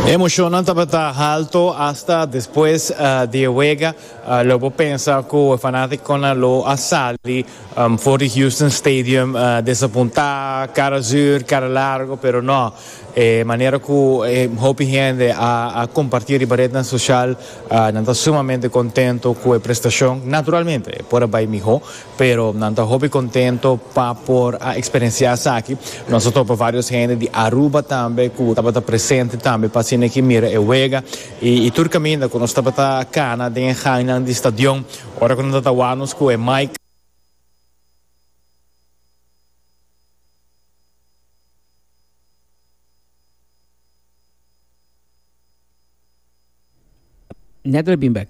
Emocionnan tabata halto hasta despues di e wega lo bo pensa cu e fanaticonan lo a sali for di Houston Stadium desapunta, cara zuur, cara largo, pero no e manera cu hopi hende a comparti riba rednan social nan ta sumamente contento cu e prestacion, naturalmente por a bay miho. Pero nan ta hopi contento pa por a experiencia esaki. Nos a topa varios hende di Aruba tambe cu tabata presente tambe pa asina ki mira e wega. Y tur caminda cu nos tabata cana den e hainan di stadion, ora cu nan ta tawanos cu e mic, Neto a bin bek.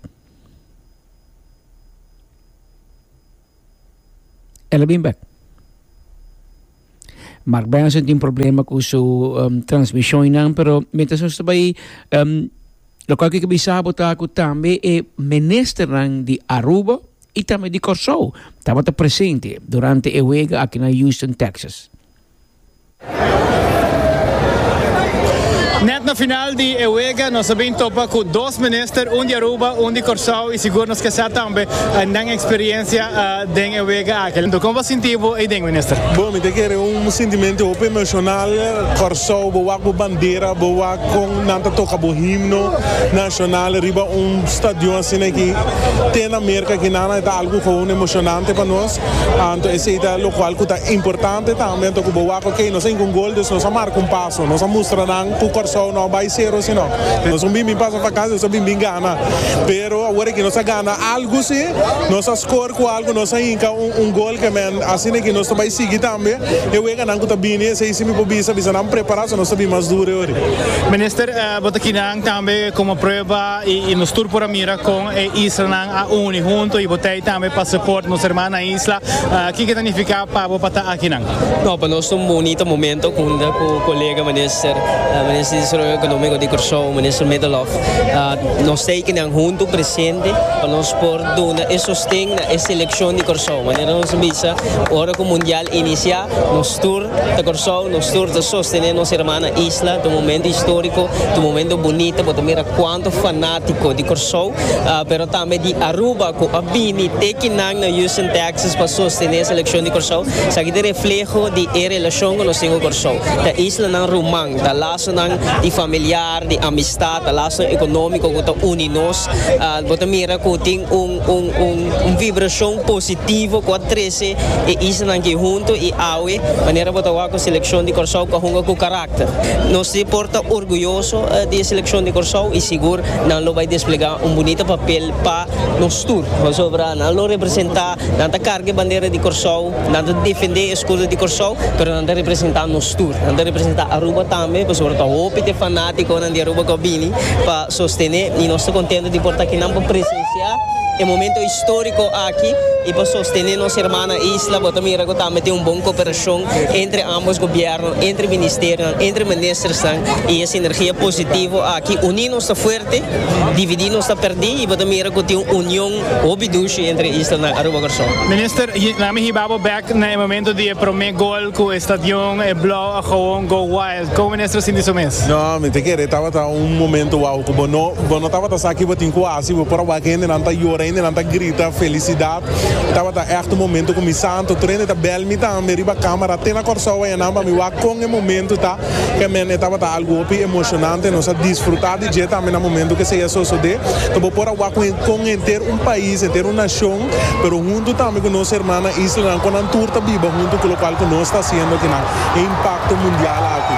El a bin bek. Mark Benson tin problema ku su transmisionnan, pero mientras nos ta bai lokal ke ke bisa bo ta ku tambe e ministernan di Aruba i tambe di Kòrsou tabata presente durante e wega aki na Houston, Texas. Net na final di e wega nos a bin topa cu dos minister, un di Aruba, un di Corsou, y sigur nos ke sa tambe nan experiencia den e wega aki. Anto con bo sinti bo eyden, minister? Bo, mi ta kere un sintimento hopi emocional. Corsou, bo wak bo bandera, bo wak con nan ta toca bo himno nacional riba un stadion asina aki te na Merca aki nan, e ta algo gewoon emocionante pa nos. Anto esei ta locual cu ta importante tambe. Anto cu bo wak oke, nos a hinca un gol dus nos a marca un paso. Nos a mustra nan cu Corsou no a bay cero si no. Nos no bin bin pasa vakansi, nos a bin bin gana. Pero awor aki nos a gana algu si, nos a score cu algu, nos a hinca un gol ke men. Asina aki nos ta bay sigui tambe. E weganan cu ta bini esei si mi por bisa, bisa nan prepara so nos ta bin mas duro e ori. Minister, bo ta kinan tambe como prueba. Y nos tur por a mira con e islanan a uni hunto y bo trae tambe pa support nos herman na isla. Kico ta nifica pa bo pa ta akinan? No, pa nos ta un bonito momento cunta cu colega Minister, Minister di Desarrollo Economico di Curaçao, Minister Middelhoff. Nos ta ekinan hunto presente pa nos por duna e sosten na e seleccion di Curaçao. Manera nos a bisa, ora cu Mundial inicia, nos tur. Ta Kòrsou, nos tur ta sostené nos herman na isla. Ta un momento histórico, ta un momento bunita, bo ta mira cuanto fanático di Kòrsou, pero tambe di Aruba cu a bini te kinan na Houston, Texas pa sostené e seleccion di Kòrsou. Esaki ta refleho di e relacion cu nos tin cu Kòrsou. Ta islanan ruman, ta lasonan di familiar, di amistad, ta lasonan economico cu ta uni nos. Bo ta mira cu tin un vibracion positivo cu a trece. Sey e islanan ki huntu i awe manera bo ta wak ku selekshon di Kòrsou ku a hunga ku karakter. Nos tin por ta orguyoso di e selekshon di Kòrsou i sigur nan lo bai desplegá un bunita papel pa nos tur. Pasobra nan lo representá, nan ta karga e bandera di Kòrsou, nan ta defendé e eskudo di Kòrsou, pero nan ta representá nos tur. Nan ta representá Aruba tambe pasobra ta hopi di e fanátikonan di Aruba ku a bini pa. Sostené y nos ta contento di por ta akinan pa presencia e momento historico aki y pa sostené nos herman na isla. Bo ta mira cu tambe tin un bon cooperacion entre ambos gobierno, entre ministerionan, entre ministersnan y e sinergia positivo aki uní nos ta fuerte, dividí nos ta perdí y bo ta mira cu tin un union hopi dushi entre e islanan Aruba Corsou. Minister, laat me hiba bo bek na e momento di e prome gol cu e stadion, e blauw, a goon, Go Wild. Como minister a sinti su mes? No, mi ta kere tabata un momento wou cu bo no bo no tabata sa ki bo tin cu haci, bo por a wak hendenan ta yora, hendenan ta grita felicidad, tabata echt un momento cu mi santo tur hende ta bel mi tambe riba camera te na Corsou waya nan pa mi wak con e momento ta, ke men e tabata algo hopi emocionante, nos a disfruta di dje tambe na momento cu esey a sosode, ta bo por a wak cu con henter un pais, henter un nacion. pero huntu tambe ku nos herman na islanan ku nan tur ta biba huntu ku lokual ku nos ta hasiendo akinan e impakto mundial aki.